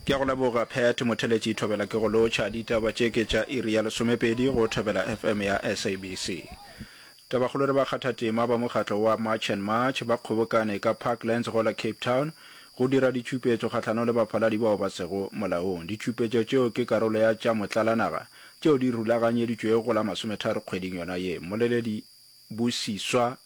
Ke a go leboga Pat Motheletši Thobela ke go lotšha ditaba tše ke tša iri ya lesomepedi go Thobela FM ya SABC. Tabakgolo le bakgathatema ba mokgatlo wa March and March ba kgobokane ka Parklands go la Cape Town go dira ditšupetšo kgahlanong le baphaladi bao ba sego molaong. Ditšupetšo tšeo ke karolo ya tša motlalanaga tšeo di rulaganyeditšwego go la masometharo kgweding yona ye. Mmoleledi Busiswa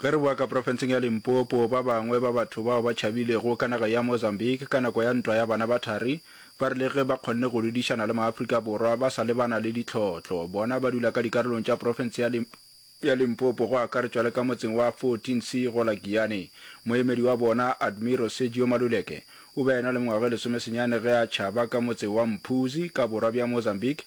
Ge re boa ka profenseng ya Limpopo, ba bangwe ba batho bao ba tšhabilego ka naga ya Mozambique ka nako ya Ntwa ya Bana ba Thari ba rile ge ba kgonne go lwedišana le maAfrika Borwa ba sa lebana le ditlhohlo. Bona ba dula ka dikarolong tša profense ya ya Limpopo go akaretšwa le ka motseng wa 14 C go la Giyane. Moemedi wa bona, Admiral Sergio Maluleke, o be a ena le mengwaga e lesomesenyane ge a tšhaba ka motse wa Mphuzi ka borwa bja Mozambique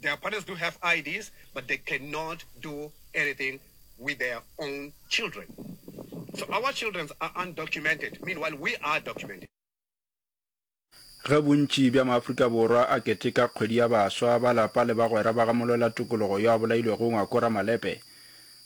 Their partners do have IDs but they cannot do anything with their own children. So our children's are undocumented meanwhile we are documented. Ge bontši bja Maafrika Borwa a keteka kgwedi ya baswa, ba lapa le bagwera ba ga molwela tokologo yo a bolailwego Ngwako Ramalepe,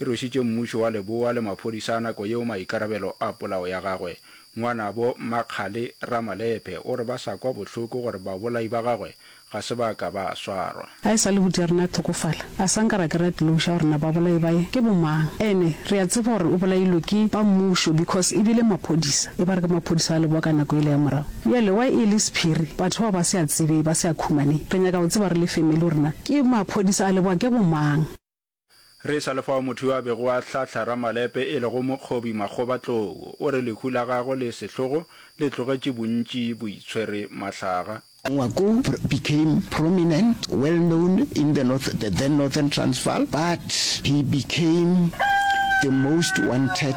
e rwešitše mmušo wa leboa le maphodisa a nako yeo maikarabelo a polao ya gagwe. Ngwanabo Makgale Ramalephe o re ba sa kwa bohloko gore babolai ba gagwe ga se ba ka ba swarwa. A e sa lehuti ya rena a hlokofala, a sa nka ra kry-a closure gore na babolai bae ke bomang. Ene re a tseba gore o bolailwe ke ba mmušo because e bile maphodisa, e ba re ke maphodisa a leboa ka nako ele ya morago. Bjale why e le sephiri, batho bao ba se a tsebee, ba se a khumanee. Re nyaka go tseba re le family gore na ke maphodisa a leboa ke bomang. Re e sa le fao motho yo a bego a hlahla Ramalepe e lego Mokgobi Makgobatlou o re lehu la gagwe le sehlogo le tlogetše bontši bo itshwere mahlaga. Ngwaku became prominent, well known in the north, the then Northern Transvaal, but he became the most wanted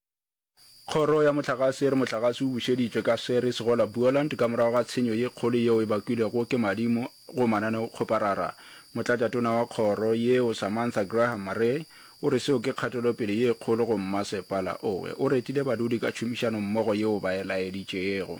Kgoro ya Mohlagase e re mohlagase o bušeditšwe ka Seri Segola Buoland ka morago ga tshenyo ye kgolo yeo e bakwilego ke madimo go mananeokgoparara. Motlatšatona wa kgoro yeo Samantha Graham Maree o re seo ke kgatelopele ye kgolo go mmasepala owe. O retile badudi ka tšhomišano mmogo yeo ba e laeditšego.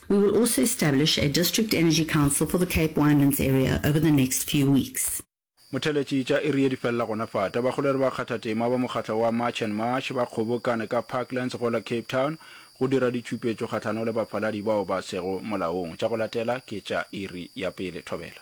We will also establish a District Energy Council for the Cape Winelands area over the next few weeks. Motheletši tša iri ye di felela gona fa. Tabakgolo e re bakgathatema ba mokgatlo wa March and March ba kgobokane ka Parklands go la Cape Town go dira ditšupetšo kgahlano le bafaladi bao ba sego molaong. Tša go latela ke tša iri ya pele. Thobela.